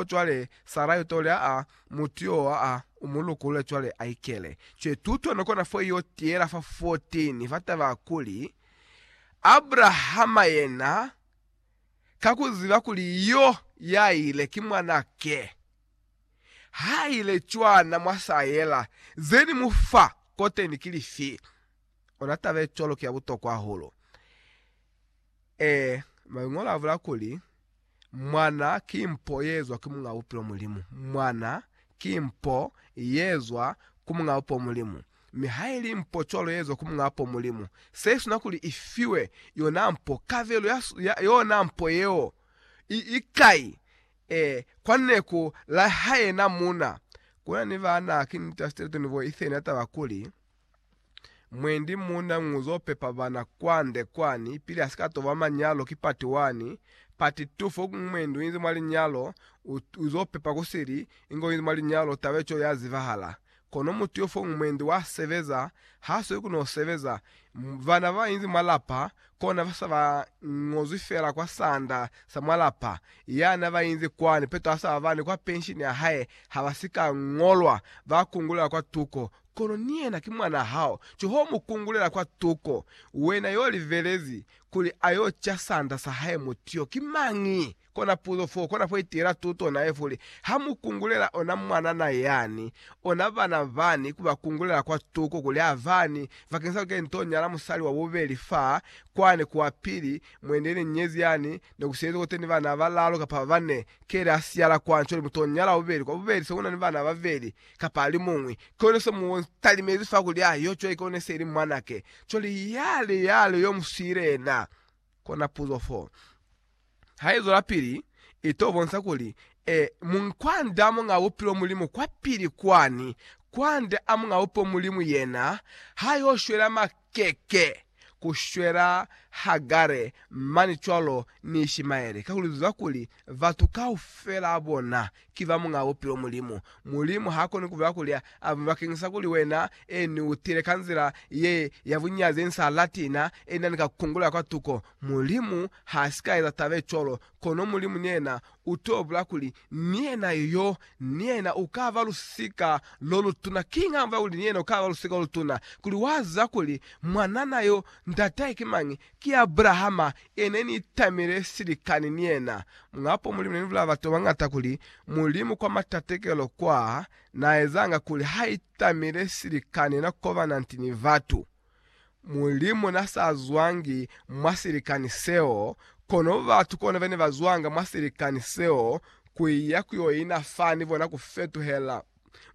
o cwale Sarai utole a mutu yo wa a u mu lukulule cwale a ikele. Cwale tuto no kona fo yo tiyela fa 14 fa taba kuli, Abrahama yena, ka ku ziba kuli yo ya ile ki mwana ke, ha ile cwana mwa sa yela, ze ni mu fa koteni ki lifi? Ona taba ye cwalo ki ya butokwa hahulu. Ee, Mañolo abula kuli, Mwana ki mpo yeezwa ki Muñ'a Bupilo Mulimu. Mwana ki mpo yeezwa ku Muñ'a Bupo Mulimu. Mi haili mpo cwalo yeezwa ku Muñ'a Bupo Mulimu, seisuna kuli ifiwe yona mpo, kabelo ya, ya yona mpo yeo i, i kai? Ee, kwa neku la hae na muna. Kuna ni baana, ki niti ya Stilton bo Ethan ya taba kuli, Mwendi muuna nguzo pepa bana kwande kwani pili asika toba manyalo ki pati wani, pati tu fo mwendi uinzi mwa linyalo uzo pepa kusili inge uinzi mwa linyalo taba ico ya zibahala. Kono mutu yo fo mwendi wa sebeza ha soli ku no sebeza, bana ba inzi mwa lapa kona ba sa ba ngozwi fela kwa sanda sa mwa lapa, yana ba inzi kwani peto asaba bani kwa penshini ya hae haba sika ngolwa ba kungulela kwa tuko Kono ni yena ki mwanaa hao, ki ho mu kungulela kwa tuko, wena yo livelezi kuli a yo ca sanda sa hae mutu yo ki mañi? Kona puzo fo kona ku itiela tuto nae kuli, Ha mu kungulela ona mwanana yani, ona bana bani ku ba kungulela kwa tuko kuli a bani, bakeñisa lika nto nyala musali wa bubeli fa, kwani ku wa pili, mwendi ye ni nyezi yani, ne ku siezwe kote ni bana ba balalu kapa ba bane, keli a siyala kwani, cwale muto nyala wa bubeli, kwa bubeli se una ni bana ba beli, Kapa ali muñwi, ki one se mu talimezi fa kuli a yo cwale ki one se li mwanake. Cwale yale, yale yo mu siile yena. Kona puzo fo. Ha i zwelapili, i to bonsa kuli, e, Munkwande a Muñaa Bupilo Mulimu kwapili kwani, kwande a Muñaa Bupilo Mulimu yena, ha yo shwela ma, keke ku shwela Hagare mani cwalo ni Ishimaele, kakuli lu ziba kuli batu kaufela bona ki ba Muñaa Bupilo, Mulimu. Mulimu ha koni ku bula kuli a bule bakeñisa kuli Wena e ni u tile ka nzila ye ya bunyazi ye ni sa lati, na e na ni ka ku kungulela kwa tuko. Mulimu ha si ka eza taba ye cwalo, kono Mulimu ni yena u t'o bula kuli Ni yena yo, ni yena u ka ba lusika lo lutuna. Kiñi hamba kuli ni yena u ka ba lusika lo lutuna? Kuli wa ziba kuli mwanana yo ndatahe ki mañi? Ki Abrahama, ye ne ni tamile silikani ni yena. Muñapo Mulimu ne ni bulala batu ba bañata kuli Mulimu kwa matatekelo kwaa, na ezanga kuli ha itamile silikani na kobana nti ni batu. Mulimu na sa zwangi mwa silikani seo, kono batu kona bene ba zwanga mwa silikani seo ku iya ku yo ina fa ni bona ku fetuhela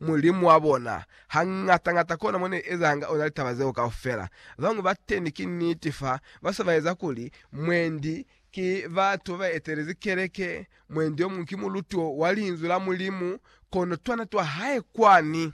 Mulimu wa bona. Hañata-ñata kona mo ne ezahanga ona litaba zeo kaufela. Bañwi ba teni ki niti fa ba sa ba eza kuli, mwendi ki batu ba ba etelezi keleke, mwendi omuñwi ki muluti wa Linzwi la Mulimu, kono twana twa hae kwani.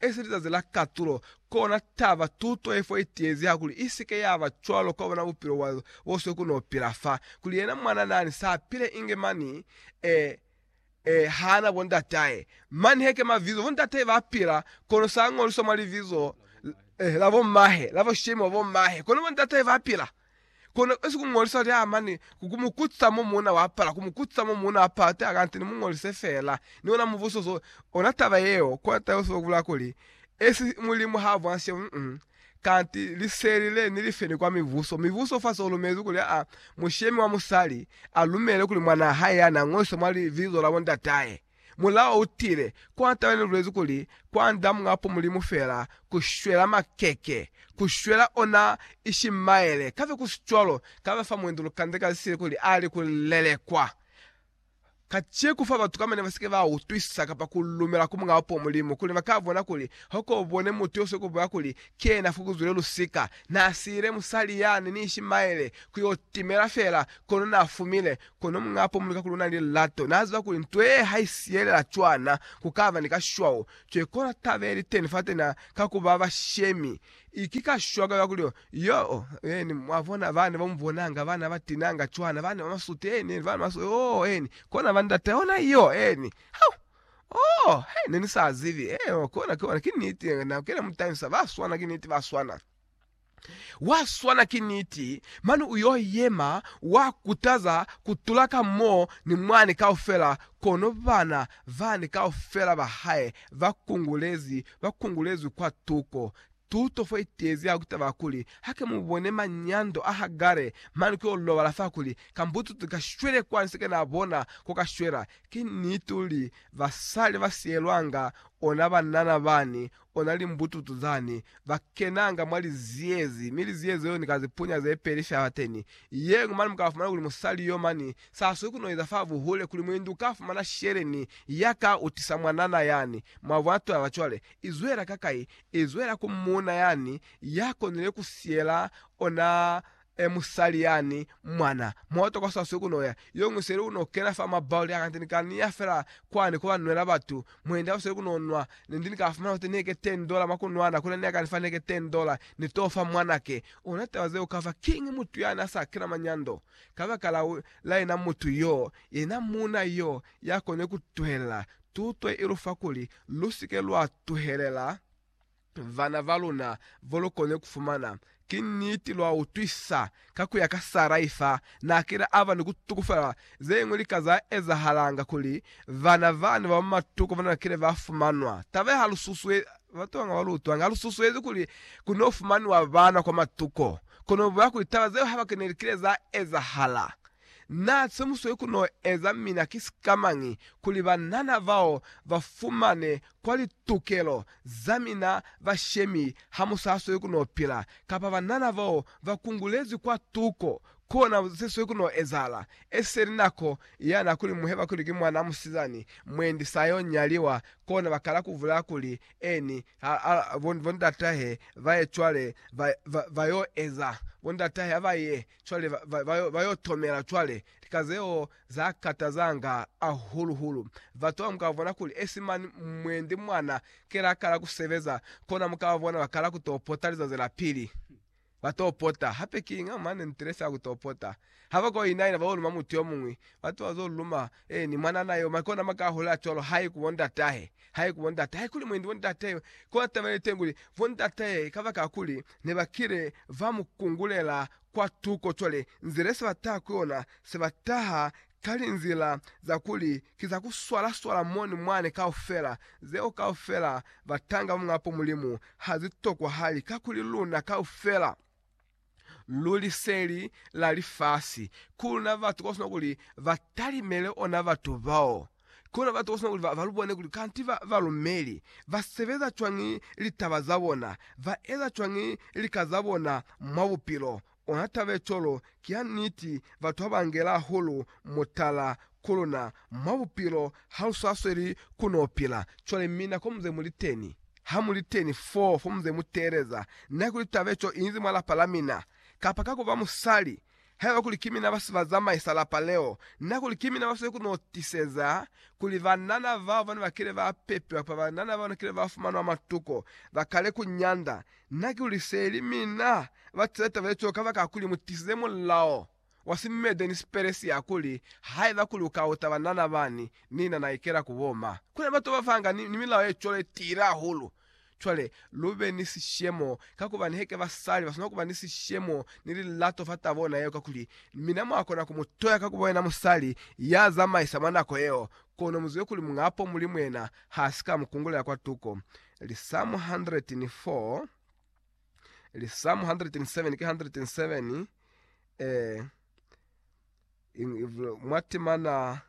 Esi lizazi la katulo, kona taba tuto yefo itiezi hakuli isike yaba cwalo kwa bona bupilo bwa boswe ku no pila fa, kuli yena mwana nani sa pile inge mani e, e hana bo ndatahe. Mani heke mavizo bo ndatahe ba pila, kono sa ngolwiswa mwa livizo la bo mahe, la bo shemi wa bo mahe, kono bo ndatahe ba pila. Kono besi ku ngolisa lya mane ku ku mu kutisa mo muuna wa pala, ku mu kutisa mo muuna wa pala, teka kanti ni mu ngolise fela. Ni ona mubuso so, ona taba yeo, kono taba yo sibaka ku bulala kuli, Esi Mulimu ha vwanshe, mm, kanti liseli le ni li feni kwa mibuso. Mibuso fa so lumezi kuli a, mushemi wa musali a lumele kuli mwanaa hae ya na ngolise mwa libizo la bo ndatahe. Mulao u tile, kwa talelulezi kuli kwa nda Muapo Mulimu fela ku shwela makeke, ku shwela ona Ishimaele, kabe ku si cwalo, kabe fa mwendi lukande ka zisile kuli a li ku lelekwa. Kacie ku fa batu kamba ne ba si ke ba utwisisa kapa ku lumela ku Muapo Mulimu kuli ba ka bona kuli ha ko bone mutu yo soko boya kuli ki yena fa ku zwile lusika. Na siile musali yani ni Ishimaele ku yo timela fela, kono na fumile Kono muñaa pomuluka kuli unani lilato, naaziba kuli nto yee haisiyelela cwana, kukaba ni kashwao, kekona taba yeliteni fatena ka kuba bashemi, ki kashwao ka kuli yoo, eeni, mwabona bana bamubonanga, bana batinanga cwana, bana bamasuti, eeni, eeni, bana bamasuti, yoo, eeni, kona bandata, yona iyo, eeni, hau, oo, he, nenisaazibi, eeho, kona, kona, kiniti, na kena mutangisa, baswana, kiniti, baswana. Wa swana ki niti, mane u yo yema wa kutaza ku tula ka mo ni mwani kaufela, kono bana bani kaufela ba hae ba kungulezi, ba kungulezwi kwa tuko. Tuto fo itezi ha ku taba kuli, hake mu bone manyando a Hagare mane ku yo lobala fa kuli, ka mbututu ka shwele kwa ni se ke na bona ko ka shwela. Ki niti uli, basali ba siyelwanga ona banana bani, Ona limbututu zani, ba kenanga mwa liziyezi, mi liziyezi leo ni ka zipunya ze peli shalateni yeñwi, mane mu ka fumana kuli musali yo mani sa swi ku no eza fa buhule, kuli muindi u ka fumana shele ni ya ka utisa mwanana yani. Mwabona taba cwale? I zwela ka kai? I zwela ku muuna yani ya konile ku siyela ona e musali yani mwana moto kwa swaswi ku noya yoñwi seli ku no kena fa ma barrel a kante ni ka niya fela kwani ku ba nwela batu mwendi apo seli ku no nwa ne ndi ni ka fumana kuti neke 10 dollar mwa ku nwana kule ne a ka ni fa neke 10 dollar ni to fa mwanake ona taba zeo kava kiñi mutu yani a sa kena manyando kabaka la la yena mutu yo yena muuna yo ya kone ku tuhelela tuto ye i lu fa kuli lu si ke lwa tuhelela Vana va luna vo lu koni ku fumana, ki niti lwa utwisa ka ku ya ka sa Raifa n'a kile a ba ni ku tukufela ze ñwi lika za ezahalanga kuli vana bani ba matuku ba na kile ba fumanwa. Taba ye ha lu susuezi batu ba nga ba lu utwanga, ha lu susuezi kuli ku n'o fumaniwa bana kwa matuku, kono lu boya kuli taba zeo haba ki ne li kile za ezahala. Na semuswe ku no eza mina ki sika mañi kuli banana bao ba fumane kwa litukelo za mina bashemi ha mu sa swe ku no pila, kapa banana bao ba kungulezwi kwa tuko? Kona ze swe ku no ezahala, eseli nako ya na kuli muheba kuli ki mwanaa musizani mwendi sa yo nyaliwa, kona ba kala ku bulaya kuli eni ha a bo ndatahe ba ye cwale ba, ba, ba yo eza bo ndatahe ha ba ye Cwale ba, ba, ba, ba yo tomela cwale lika zeo za katazanga ahulu hulu. Batu ba muka bona kuli esi mani mwendi mwana kela akala ku sebeza, kona muka ba bona bakala ku to pota lizazi la pili. Ba to pota. Hape kiña mane ntilesa ya ku to pota. Ha ba ko inaina ba yo luma mutu yomuñwi, batu ba zo luma Ee, ni mwanana yo, maki ona maka ahula cwalo, hai ku bondatahe, hai ku bondata, haikuli mwendi wa ndatahe yo. Kona taba yeliteñi kuli, bondatahe, kabakala kuli nebakile ba mu kungulela kwa tuko, cwale, nzila yese bataha ku yona, se bataha ka linzila za kuli ki za ku swala-swala moni mwane kaufela, zeo kaufela batanga ba Muñapo Mulimu, ha zi tokwahali, kakuli luna kaufela. lu liseli la lifasi, ku na batu ba sina kuli ba talimele ona batu bao, ku na batu ba sina kuli ba lu bone kuli kanti ba ba lumeli, ba sebeza cwañi litaba za bona, ba eza cwañi lika za bona mwa bupilo. Ona taba ye cwalo ki ya niti, batu ha ba ngela hahulu mutala ku luna mwa bupilo ha lu sa sweli ku no pila cwale mi nako mu ze mu li teni. Ha mu li teni fo, fo mu ze mu teeleza, na kuli taba ye co i inzi mwa lapa la mina, kapa ka ku ba musali, haiba kuli ki mina ba si ba zamaisa lapa leo, na kuli ki mina ba sweli ku no tiseza kuli banana bao ba ne ba kile ba pepiwa kapa banana bao ne kile ba fumanwa matuko ba kale ku nyanda, na ki luli se li mina ba tiza taba ye co kabakala kuli mu tisize mulao wa si Mede ni si Peresia kuli, Haiba ku lu kauta banana bani, ni na na ikela ku boma. Ku na batu ba fanga ni milao ye cwalo ye tiile hahulu. Cwale, lu be ni sishemo, kakuba niheke ba sali ba swanela kuba ni sishemo ni lilato fa tabo yona yeo, kakuli, mina mwa kona ku mu toya kakuba yena musali ya zamaisa mwa nako yeo, kono mu zibe kuli Muñapo Mulimu yena ha si ka mu kungulela kwa tuko. Lisamu 104. Ili Psalm 107 ki 107 eh, mwa temana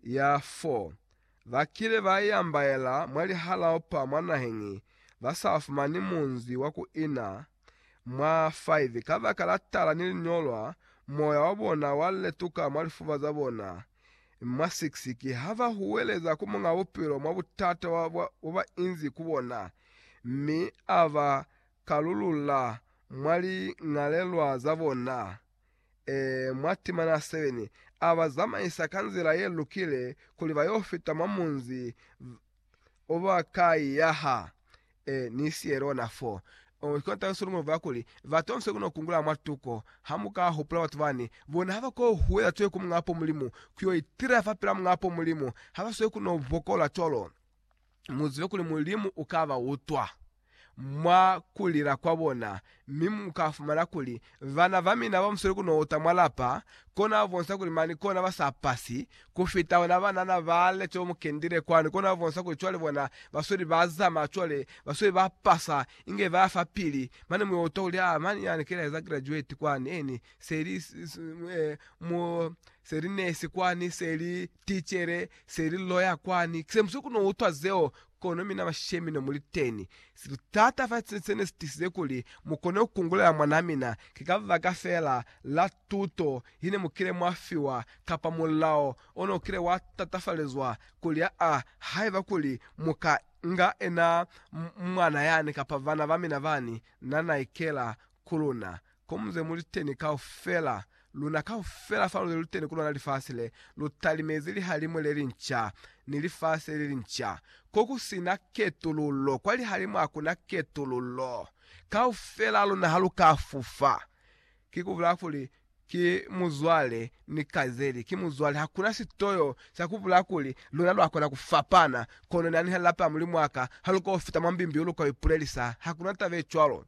ya 4 bakile ba yambaela mwa lihalao pa mwa nahengi ba sa fumani munzi wa ku ina mwa 5 ka baka la tala ni linyolwa moya wa bona wa letuka mwa lifuba za bona Mwa 6, ki ha ba huweleza ku Muñ'a Bupilo mwa butata bo ba inzi ku bona, mi a ba kalulula mwa liñalelwa za bona. Ee, mwa timana 7, a ba zamaisa ka nzila ye lukile kuli ba y'o fita mwa munzi. uba kai ya ha e ni siye lona fo. Ongo kona taba Solomon uba kuli, Batu bamuse kuno kungula mwa tuko, ha mu ka hupula batu bani, bona haba ko huwela cwañi ku Muñ'a po Mulimu, ku yo itila fa pela Muñ'a po Mulimu, ha ba swe kuno bokola cwalo. Mu zibe kuli Mulimu u ka ba utwa. mwa ku lila kwa bona, mi mu ka fumana kuli bana ba mina ba musali ku no uta mwa lapa, kona ba bonisa kuli mani kona ba sa pasi, ku fita ona banana ba lete omu kendile kwani, kona ba bonisa kuli cwale bona ba sweli ba zamaya cwale, ba sweli ba pasa, inge ba ya fa pili, mane mu yo utwa kuli, Ah, mani yani kile aeza graduate kwani, eni, se li, mu, se li nurse kwani, se li Ticele, se li loya kwani. Se muswe ku no utwa zeo, kono mina bashemi no muli teni. Si li taata fa cine sene si tisize kuli mu kone ku kungulela mwanaa mina, ki kabaka feela la tuto ye ne mu kile mwa fiwa, kapa mulao o no kile wa tatafalezwa kuli aa, haiba kuli mu ka nga enaa mwana yani kapa bana ba mina bani, na na ikela ku luna. Komuze muliteni kaufela, luna kaufela faluze luteni kulona lifasi le, lutalimezi lihalimu lelinca ni lifasi lelinca. Kokusina ketululo, kwa lihalimu hakuna ketululo. Kaufela luna haluka fufa. Kikubula kuli, ki muzwale ni kazeli, ki muzwale. Hakuna sitoyo sa kubula kuli, luna lwakona kufapana, kono nani halilapa ya Mulimu waka, haluka ufita mwa mbimbi uluka uipulelisa. Hakuna taba yecwalo.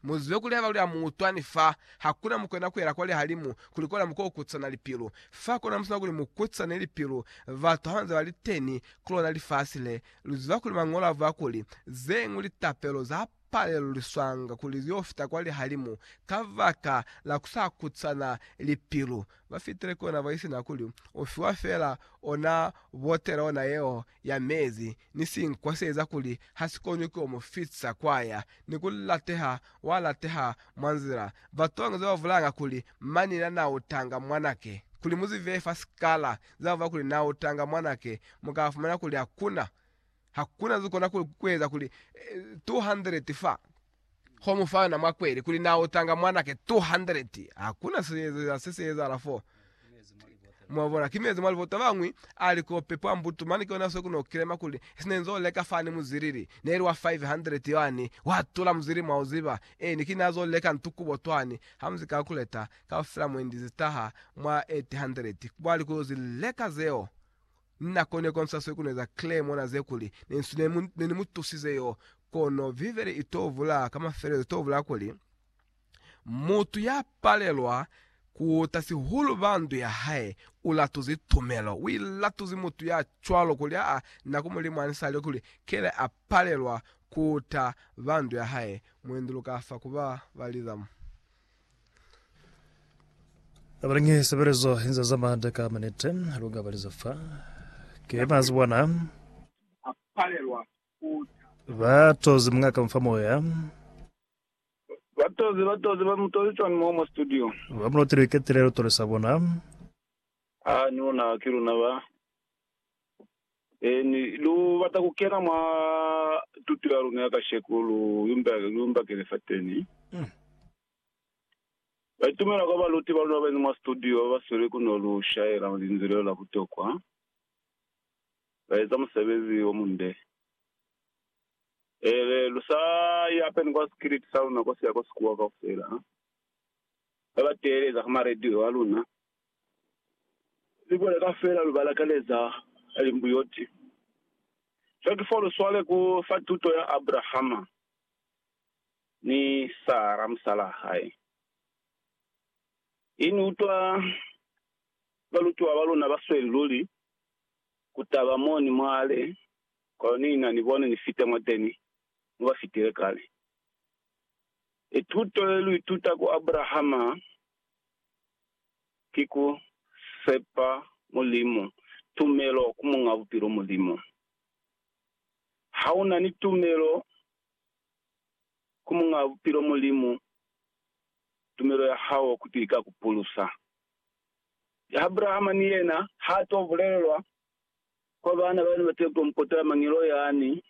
Muzibe kuli haba luli ha mu utwa ni fa hakuna mukwena kuela kwa lihalimu kuli kola muko ukutsana lipilu. Fa kona musina kuli mu kutsane lipilu batu habanze bali teni kulona lifasi le. Luziba kuli Mañolo avuya kuli, Zeñwi litapelo za paleluliswanga kuli zio fita kwa lihalimu kabaka la kusa kutsana lipilu. Ba fitile kona baisina kuli ufiwa feela ona botela ona yeo ya mezi ni sinkwa se eza kuli ha si konwi ku yo mu fitisa kwa ya ni ku lateha wa lateha mwa nzila. Batu ba bangezi ba vulanga kuli manina na utanga mwanake. Kuli mu zibe fa sikala ze ba vula kuli na utanga mwanake, mu ka fumana kuli hakuna, hakuna ze kona ku eza kuli 200 fa Ho mu fa yona mwa kweli kuli na otanga mwanake 200. Hakuna seeza se si ezahala fo. Mwabona, ki mezi mwa libota bañwi, a li ko pepo a mbutu mane, ki yona se ku no kilema kuli, si ne nzo leka fani muzilili, ne li wa 500 yani, wa tula muzilili mwa uziba. Eeni, ki ne azo leka ntu kubo twani, ha mu zi calculeta, kaufela mwendi zi taha mwa 800, kwa li ku yo zi leka zeo. Na kone konsa swekune za clay mona ze kuli ne nsu ne, ne ni mu tusize yo. Kono Bibele i to vula ka mafelelezo, i to vula kuli, Mutu ya palelwa ku uta sihulu ba ndu ya hae, u latuzi tumelo. U ilatuzi mutu ya cwalo kuli aa na ku mu limwanisa lyo kuli kele a palelwa ku uta ba ndu ya hae. Muenduluka fa ku ba baliza mu. Abalingi sebelezo inza za mada ka manete lunga baliza fa ke mazi bona ba tozi munga ka mfa moya ba tozi ba tozi ba mutozi chwani mo mo studio ba mulotile ketelelo tole sa bona a ni bona ke luna ba N, Lu bata ku kena mwa tuto ya luna ya kasheko? Lu imba, lu imbakele fateni. Ba itumela kwa baluti ba luna ba beni mwa situdio ba ba sweli ku no lu shaela linzwi leo la butokwa. Ba eza musebezi o munde. Ee, lu sa i apeni kwa sikiliti sa luna kwa siya kwa sikuwa kaufela. Ba ba teeleza ka maradio a luna. Ni koleka fela lu balakaneza limbuyoti. Cwa ki fo lu swale ku fa tuto ya Abrahama ni Sara musalaa hae. I ni utwa balutiwa ba luna ba sweli luli ku taba mo ni mwale, kono ni na ni bone ni fite mwateni mo ba fitile kale. I tuto ye lu ituta ku Abrahama. ki ku sepa Mulimu, tumelo ku Muñ'a Bupilo Mulimu. Ha u na ni tumelo ku Muñ'a Bupilo Mulimu, tumelo ya hao kuti i ka ku pulusa. Ya Abrahama ni yena ha to bulelelwa kwa baana ba ne ba tepe mpota, mangelo yani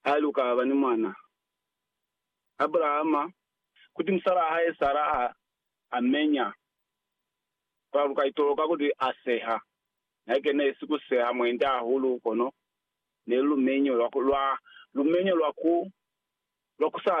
a li u ka ba ni mwana. Abrahama, kuti musalaa hae Sara a a menya. Kono lu ka itoloka kuli a seha. Haike ne si ku seha mwenda hahulu, kono ne lu lumenyo lwa ku sa